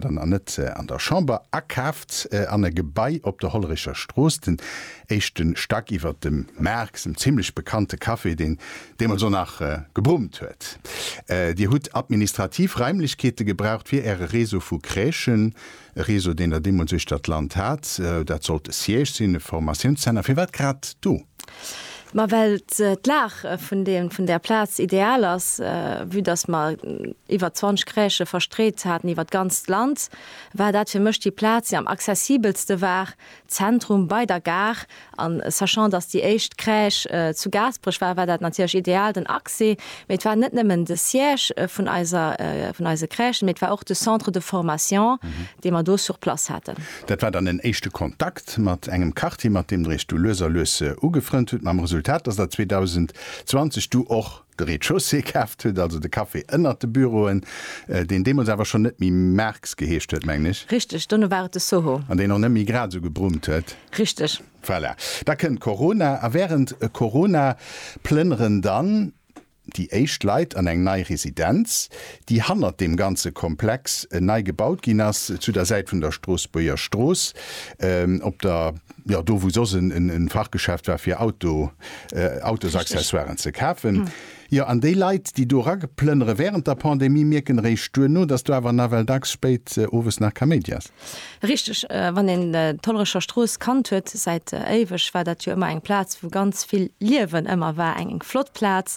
dann an net an der Chamber, akaaft an e Gebai op der Hollerecher Strooss, den éischte Stack iwwer dem Maarx, dem zimlech bekannte Café, deen deemools och nach gebrummt huet. Dir hutt administrativ Raimlechkeete gebraucht fir Äre Réseau vu Crèchen, e Réseau, deen Der deemools uechter d'Land hat. Dat sollt e Siège sinn, e Formatiounszenter. Firwat grad do? Ma well d'Lag vun deem, vun där Plaz ideal ass, vue dass mer iwwer 20 Crèchë verstreet haten iwwer d'ganzt Land, war dat fir mech déi Plaz, déi am accessibelste war, Zentrum, bei der Gare. An sachant, dass déi éischt Crèche zu Gaasperech war, war dat natierlech ideal, den Accès. Mee et war net nëmmen de Siège vun eiser, vun eise Crèchen, mee et war och de Centre de formation, dee mer do sur place haten. Dat war dann en éischte Kontakt mat engem Quartier, mat deem Der Iech du lues a lues ugefrënnt hutt, mam Resultat, dass Der 2020 du och de Rez-de-chaussée kaaft hutt, also de Café ënnert de Büroen, deen deemools awer schonn net méi Marx geheescht huet, mengen ech. Richteg, dono war et de Soho. An deen och net méi grad esou gebrummt huet. Richteg. Voilà. Da kënnt Corona a wärend Corona plënneren dann Déi éischt Leit an eng nei Residenz, déi hannert deem ganze Komplex nei gebaut ginn ass, zu der Säit vun der Stroossbuerger Strooss, op der, jo, do wou soss e Fachgeschäft war fir Auto, Autosaccessoiren ze kafen. Jo, an déi Leit, déi do erageplënnere wärend der Pandemie, mierken eréischt duerno, dass do awer nawell dacks spéit owes nach Kaméidi ass. Richteg, wann een d'Hollerecher Strooss kannt huet säit éiweg, war dat jo ëmmer eng Plaz wou ganz vill Liewen ëmmer war, eng eng flott Plaz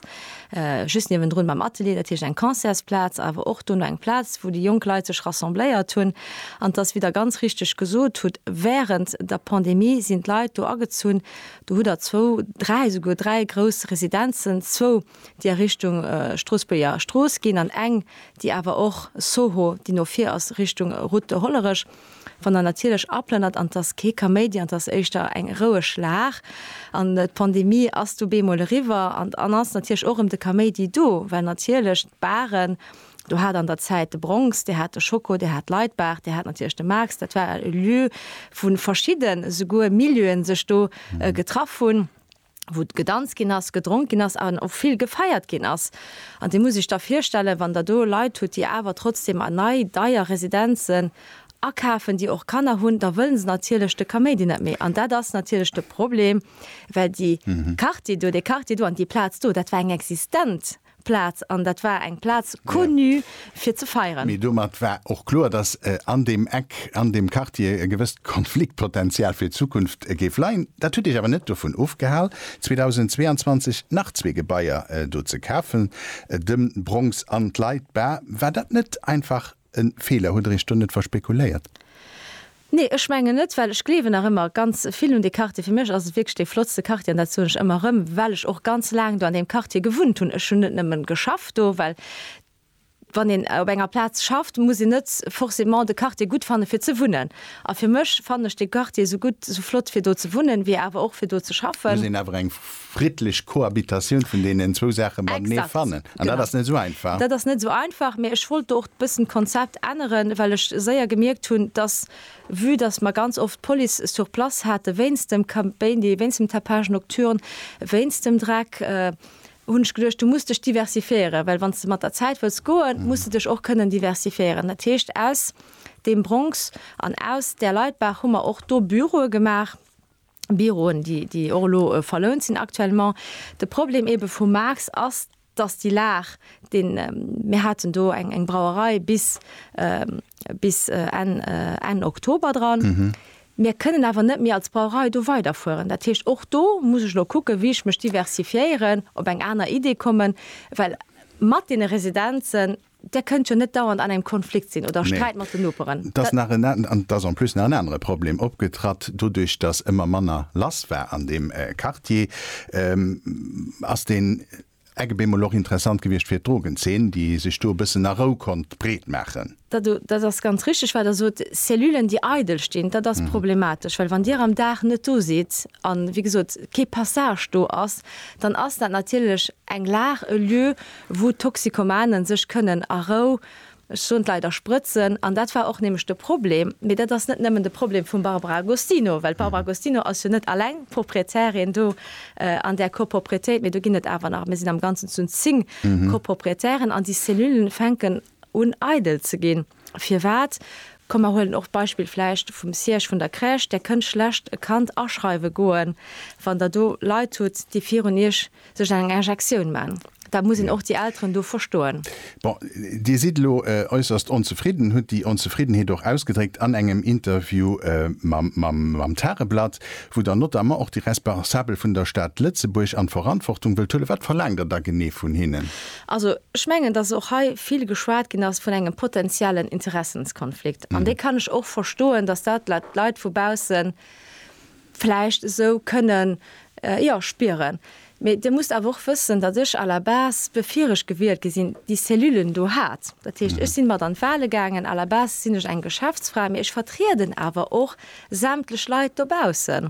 just niewendrun beim Atelier, dat heescht eng Concertsplaz, awer och dono eng Plaz wou déi jonk Leit sech rassembléiert hunn. An 't ass wéi Der ganz richteg gesot hutt, wärend der Pandemie sinn d'Leit do agezunn, do hutt Der zwou, dräi, souguer dräi grouss Residenzen, zwou, déi a Richtung Stroossbuerger Strooss ginn an eng, déi awer och Soho, déi no vir ass Richtung Route de Hollerech, wann Der natierlech aplënnert. An 't ass kee Kaméidi an 't ass éischter eng roueg Lag. An d'Pandemie ass du bemol eriwwer an dann ass natierlech och erëm de Kaméidi do, well natierlech d'Baren, Dir hat an der Zäit de Bronx, Dir hat de Schoko, Dir hat d'Laitbar, Dir hat natierlech de Max, dat war e Lieu, wou verschidden esouguer Milieuen sech do getraff hunn. wou gedanzt ginn ass, gedronk ginn ass an och vill gefeiert ginn ass. An Dir musst Iech da virstellen, wann Der do Leit hutt, déi awer trotzdem an nei, deier Residenzen akafen, déi och Kanner hunn, da wëlle se natierlech de Kaméidi net méi. An dat ass natierlech de Problem, well déi Quartier do, dee Quartier do an déi Plaz do, dat war eng existent Plaz, an dat war eng Plaz connue fir ze feieren. Mee domat war och kloer, datt an deem Eck, an deem Quartier e gewësst Konfliktpotential fir d'Zukunft géif leien. Dat huet Iech awer net dovun ofgehal, 2022 nach zwee Gebaier do ze kafen, de Bronx an d'Leit Bar. War dat net einfach e Feeler? Huet Der Iech do net verspekuléiert? Nee, ech mengen net, well ech gleewen nach ëmmer ganz vill un dee Quartier. Fir mech ass et wierklech dee flottste Quartier an dat soen ech ëmmer erëm, well ech och ganz laang do an deem Quartier gewunnt hunn. Ech hunn net nëmmen geschafft do, well wann een op enger Plaz schafft, muss een net forcément de Quartier gutt fanne fir ze wunnen. A fir mech fannen ech dee Quartier esou gutt, esou flott fir do ze wunnen, wéi awer och fir do ze schaffen. Muss een awer eng. friddlech Cohabitatioun vun deenen zwou Saache matenee fannen. An dat ass net esou einfach. Dat ass net esou einfach, mä ech wollt do och e bëssen d'Konzept änneren, well ech séier gemierkt hunn, dass, vue dass mer ganz oft d'Police sur place hate wéinst dem Kaméidi, wéinst dem Tapage nocturne, wéinst dem Dreck, hunn ech geduecht, du muss dech diversifiéieren, well wann s de mat der Zäit wëlls goen, muss de dech och kënnen diversifiéieren. Dat heescht, aus deem Bronx an aus där Leitbaach hu mer och do Büroe gemaach. Büroen, déi, déi och elo verlount sinn aktuellement. De Problem ebe vum Max ass, dass déi Lag, déi mir haten do eng, eng Brauerei bis, bis Enn, Enn Oktober dran. Mir kënnen awer net méi als Brauerei do weiderfueren. Dat heescht, och do muss ech elo kucken, wéi ech mech diversifiéieren, op eng aner Idee kommen, well mat deene Residenzen, Där kënnt jo net dauernd an engem Konflikt sinn oder Sträit mat den Noperen. Nee. Et ass nach en an, an et ass en plus nach en anere Problem opgetratt. Doduerch, datt ëmmer manner lass war an deem Quartier, ass deen Eck op eemol och interessant gewiescht fir d'Drogenzeen, déi sech do e bëssen a Rou konnt breet maachen. Dat do, dat ass ganz richteg, wat Der sot. Cellulen, déi eidel stinn, dat ass problematesch. Well wann Dir am Dag net do sidd an, wéi gesot, kee Passage do ass, dann ass dat natierlech eng Lag, e Lieu, wou d'Toxicomane sech kënnen a Rou, ech soen et leider, sprëtzen. An dat war och nämlech de Problem, mee dat ass net nëmmen de Problem vum Barbara Agostino, well d'Barbara Agostino ass jo net alleng Proprietärin do an där Copropriétéit, mee do ginn et awer nach, mir sinn am Ganzen zu zéng Copropriétären an déi Cellulen fänken, un eidel ze ginn. Firwat? Komm mer huelen och d'Beispill vläicht vum Siège vun der Crèche, där kënnt schlecht e Kand aschreiwe goen, wann der do Leit hutt, déi virun iech sech eng Injektioun man. Dat muss een och déi Elteren do verstoen. Bon, Dir sidd elo äusserst onzefridden, hutt déi Onzefriddenheet och ausgedréckt an engem Interview mam Tageblatt, wou Der notamment och déi Responsabel vun der Stad Lëtzebuerg an d'Verantwortung wëllt huelen. Wat verlaangt Der da genee vun hinnen? Also, ech mengen, dass och hei vill geschwat ginn ass vun engem potenziellen Interessenskonflikt. An dee kann ech och verstoen, dass dat d'Leit vu bausse vläicht esou kënnen, jo, spieren. Mee Dir musst awer och wëssen, datt ech à la base, bevir ech gewielt gi sinn, déi Cellulen do hat. Dat heescht, ech sinn mat an d'Wahle gaangen. À la base sinn ech eng Geschäftsfra, mee ech vertrieden awer och sämtlech Leit dobaussen.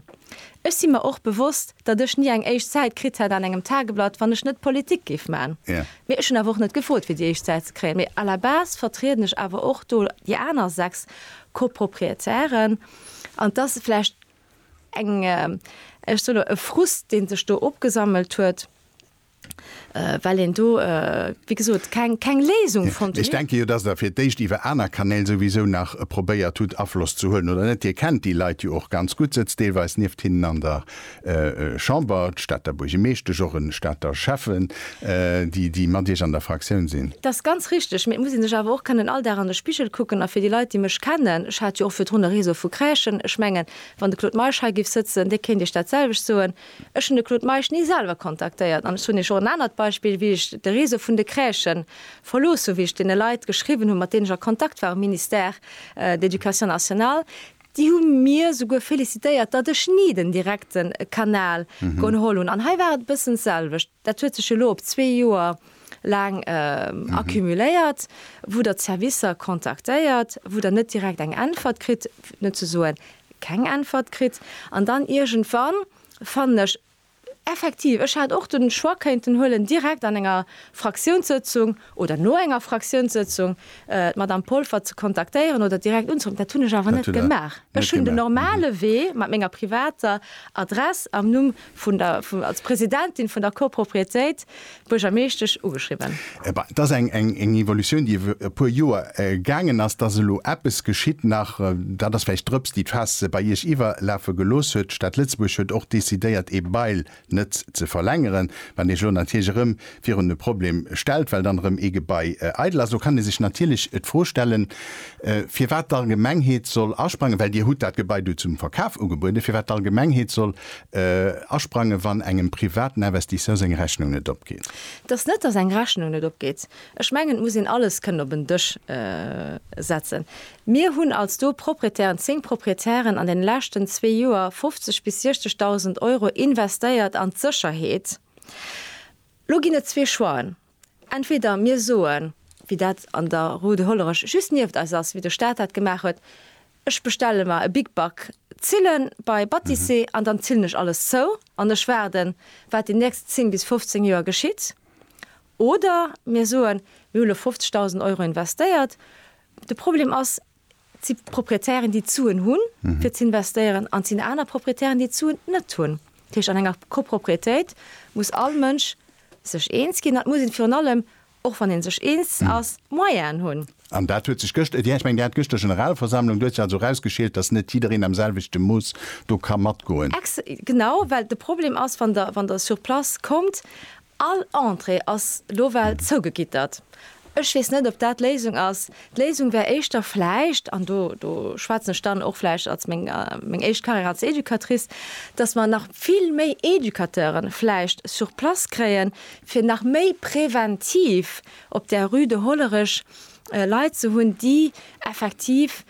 Ech si mer och bewosst, datt ech ni eng éischt Säit kritt hätt an engem Tageblatt, wann ech net Politik géif man. Mee ech hunn awer och net gefrot, fir déi éischt Säit ze kréien. Mee à la base vertrieden ech awer och do déi aner sechs Copropriétairen. An t'ass vläicht eng, ech soen elo, e Frust, dee sech do opgesammelt huet. well een do, wéi gesot, keng Léisung fonnt hunn. Ech denke jo, dass Der fir d'éischt iwwer aner Kanäl souwisou nach probéiert hutt, Afloss ze huelen, oder net? Dir kennt déi Leit jo och ganz gutt, sëtzt deelweis nieft hinnen an der Chamber, d'Stater Buergemeeschtesch, och e Stater Schäffen, déi mat Iech an der Fraktioun sinn. Dat ass ganz richteg, mee et muss ee sech awer och kënnen all Dag an de Spigel kucken. A fir déi Leit, déi mech kennen, ech hat jo och virdrun e Réseau vu Crèchen, ech mengen, wann de Claude Meisch hei géif sëtzen, dee kéint Iech datselwecht soen, Ech hunn de Claude Meisch ni selwer kontaktéiert an ech hunn Iech och en anert Beispill, wéi ech de Réseau vun de Crèchen verlooss hunn, wéi ech deene Leit geschriwwen hunn, mat deenen ech a Kontakt war um Ministère de l'Education nationale, déi hu mir souguer félicitéiert, datt ech ni den direkte Kanal geholl hunn. An hei war et e bëssen d'selwecht. Dat huet sech elo op zwee Joer laang accumuléiert, wou Der d'Servicer kontaktéiert, wou Der net direkt eng Äntwert kritt, fir net ze soen keng Äntwert kritt an dann iergendwann fannen ech effektiv, ech hätt och de Choix kéinten huelen, direkt an enger Fraktiounssëtzung oder no enger Fraktiounssëtzung d'Madame Polfer ze kontaktéieren oder direkt unzeruffe. Dat hunn ech awer net gemaach. Ech hunn den normale Wee mat menger privater Adress am Numm vun der, als Presidentin vun der Copropriétéit, d'Buergermeeschtesch ugeschriwwen. Ebei, et ass eng, eng, eng Evolutioun, déi iwwer e puer Joer gaangen ass. Dass elo eppes geschitt nach, dat ass vläicht d'Drëps, déi d'Faass bei Iech iwwerlafe gelooss huet. D'Stad Lëtzebuerg huet och decidéiert, ee Bail net ze verlängeren. Wann Iech elo natierlech erëm virun e Problem stellt, well dann erëm ee Gebai eidel ass, elo kann ee sech natierlech d'Fro stellen, firwat d'Allgemengheet soll asprangen, well Dir hutt dat Gebai do zum Verkaf ugebueden, firwat d'Allgemengheet soll asprangen, wann engem privaten Investisseur seng Rechnung net opgeet. Et ass net, datt eng Rechnung net opgeet. Ech mengen, et muss een alles kënnen op en Dësch setzen. Mir hunn als do Proprietären, zéng Proprietären an deene leschten zwee Joer 50 bis 60.000 Euro investéiert an d'Sécherheet, Lo ginn et zwee Choixen. Entweder mir soen, wéi dat an der Rue de Hollerech just nieft eis ass, wéi de Staat dat gemaach huet, Ech bestelle mer e Big Bac, zille bei Batissé an dann zillen ech alles zou an ech waarden, wat déi nächst 10 bis 15 Joer geschitt. Oder mir soen, Mir hu lo 50.000 Euro investéiert. De Problem ass, Et si Proprietären, déi d'Suen hunn, fir ze investéieren, an et sinn aner Proprietären, déi d'Suen net hunn. Dat heescht, an enger Copropriétéit muss all Mënsch sech eens ginn an et muss ee virun allem, och wann ee sech eens ass, d'Moyenen hunn. An dat huet sech gëschter, jo, ech mengen, Dir hat gëschter Generalversammlung, do huet sech also erausgeschéilt, datt net jiddereen am selwechte Mooss do ka matgoen. Ex. Genau, well de Problem ass, wann Der, wann Der sur place kommt All Entrée ass lo well zougegittert. Ech weess net, ob dat d'Léisung ass. D'Léisung wär éischter vläicht, an do, do schwätzen ech dann och vläicht als meng, meng éischt Carrière als Educatrice, dass mer nach vill méi Educateure vläicht sur place kréien, fir nach méi präventiv op der Rue de Hollerech Leit ze hunn, déi effektiv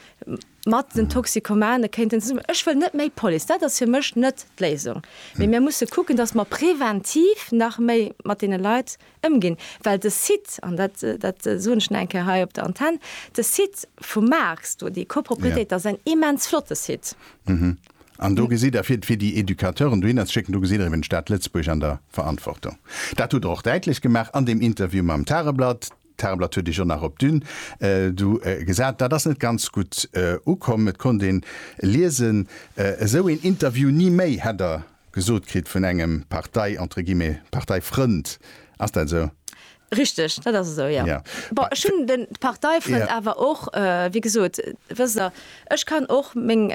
mat den Toxikomane kéinten zesummen. Ech wëll net méi Police, dat ass fir mech net d'Léisung, mee mir musse kucken, datt mer preventiv nach méi mat deene Leit ëmginn, well de Site, an dat, dat soen ech nach eng Kéier hei op der Antenn, de Site vum Maax do, déi Copropriétéit, dat ass en immens flotte Site. An do gesitt Der, fir déi Educateuren dohinner ze schécken, do gesitt Der eben d'Stad Lëtzebuerg an der Verantwortung. Dat hutt Der och däitlech gemaach an deem Interview mam Tageblatt. D'Tageblatt huet Iech och nach op d'Düne du gesat. Dat ass net ganz gutt ukomm. Et konnt een liesen, esou een Interview ni méi, hätt Der gesot kritt vun engem Partei, entre guillemets, Parteifrënd. Ass dat esou? Richteg, dat ass esou, jo. Bon, ech hunn de Parteifrënd awer och, wéi gesot, wësst Der, ech kann och meng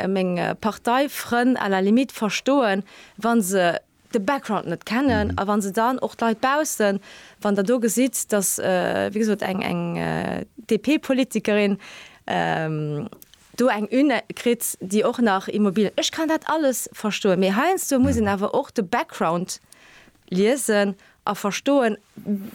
Parteifrënn à la limite verstoen, wa se de Background net kennen a wa se dann och d'Leit baussen, wann Der do gesitt, datt wéi gesot eng eng DP-Politikerin do eng Une kritt, déi och nach Immobilien, ech kann dat alles verstoen, mee heiansdo muss een awer och de Background liesen a verstoen,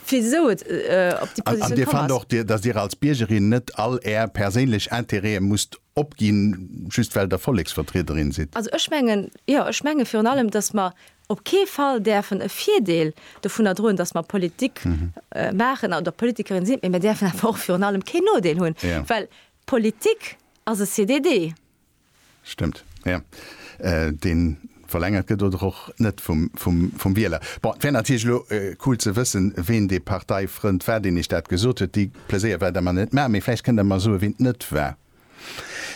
wisou et op déi Positioun komm ass. An Dir fannt och, datt Dir als Biergerin net all Är perséinlech Interêten musst Opginn, just well Der Volleksvertriederin sidd? Also ech mengen, jo, ech menge virun allem, dass mer op kee Fall däerfen e Virdeel dovunner droen, dass mer Politik maachen oder Politikerin sinn, mä mir däerfen awer och virun allem keen Nodeel hunn, well Politik ass e CDD. Stëmmt, jo. Deen Verlängert gëtt oder och net vum Wieler. Bon, et wär natierlech elo cool ze wëssen, ween dee Parteifrënd war, deen Iech dat gesot huet. Dee Pleséier well Der mer net maachen, mee vläicht kënnt Der mer soen, ween et net war.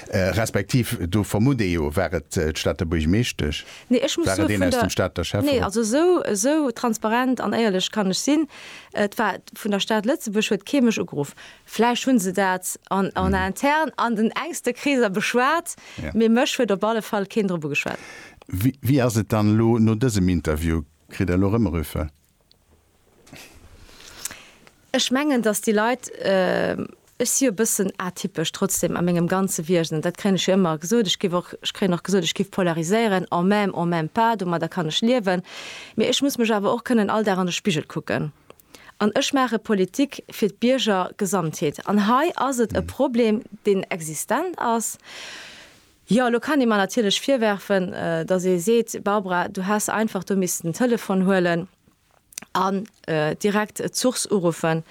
Respektiv, do vermutt ee jo, war et d'Stater Buergmeeschtesch? War et een aus dem Stater Schäfferot? Nee, ech muss soen, vun der. Esou transparent an éierlech kann ech sinn. Et war vun der Stad Lëtzebuerg, huet kee mech ugeruff. Vläicht hu se dat en interne an den enkste Kreeser beschwat, mee mech huet op alle Fall keen drop ugeschwat. Wéi ass et dann elo no dësem Interview? Kritt Der elo Rëmmerüffe? Ech mengen, datt déi Leit, ech si jo e bëssen atypesch trotzdem a mengem ganze Wiesen, dat kréien ech jo ëmmer gesot, ech géif och, ech kréien och gesot, ech géif polariséieren, en même, en même pas, domadder kann ech liewen, mee ech muss mech awer och kënnen all Dag an de Spigel kucken. An ech maache Politik fir d'Bierger Gesamtheet. An hei ass et e Problem, deen existent ass. Jo, elo kann ee mer natierlech virwerfen, datt ee seet, Barbara, du häss einfach do missten den Telefon huelen an direkt d'Source uruffen.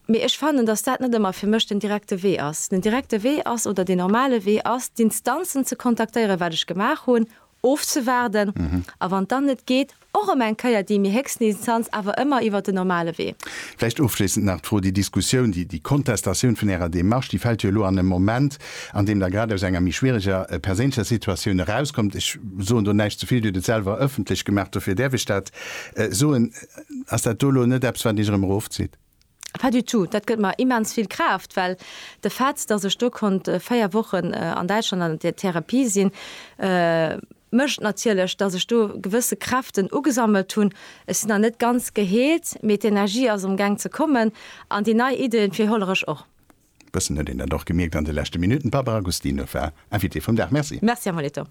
Mee ech fannen, datt dat net ëmmer fir mech den direkte Wee ass. Den direkte Wee ass, oder deen normale Wee ass, d'Instanzen ze kontaktéieren, wat ech gemaach hunn, ofzewaarden a wann dann net geet, och erëm eng Kéier déi méi héchsten Instanz, awer ëmmer iwwert den normale Wee. Vläicht ofschléissend nach d'Fro, Déi Diskussioun, déi, déi Kontestatioun vun Ärer Démarche, déi fält jo elo an e Moment, an deem Der grad aus enger méi schwiereger perséinlecher Situatioun erauskommt. Ech soen do näischt ze vill, Dir hutt et selwer ëffentlech gemaach, dofir däerf ech dat soen. Ass dat do elo net eppes, wat Iech erëm erofzitt? Pas du tout, dat gëtt mer immens vill Kraaft, well de Fait, dass ech do konnt véier Wochen an Däitschland an der Therapie sinn, mécht natierlech, dass ech do gewësse Kräften ugesammelt hunn. Ech sinn nach net ganz geheelt, mee d'Energie ass am Gang ze kommen an déi nei Iddie fir Hollerech och. Bëssen huet een dat och gemierkt an de leschte Minutten. D'Barbara Gustino war Invitée vum Dag. Merci. Merci Amoletto.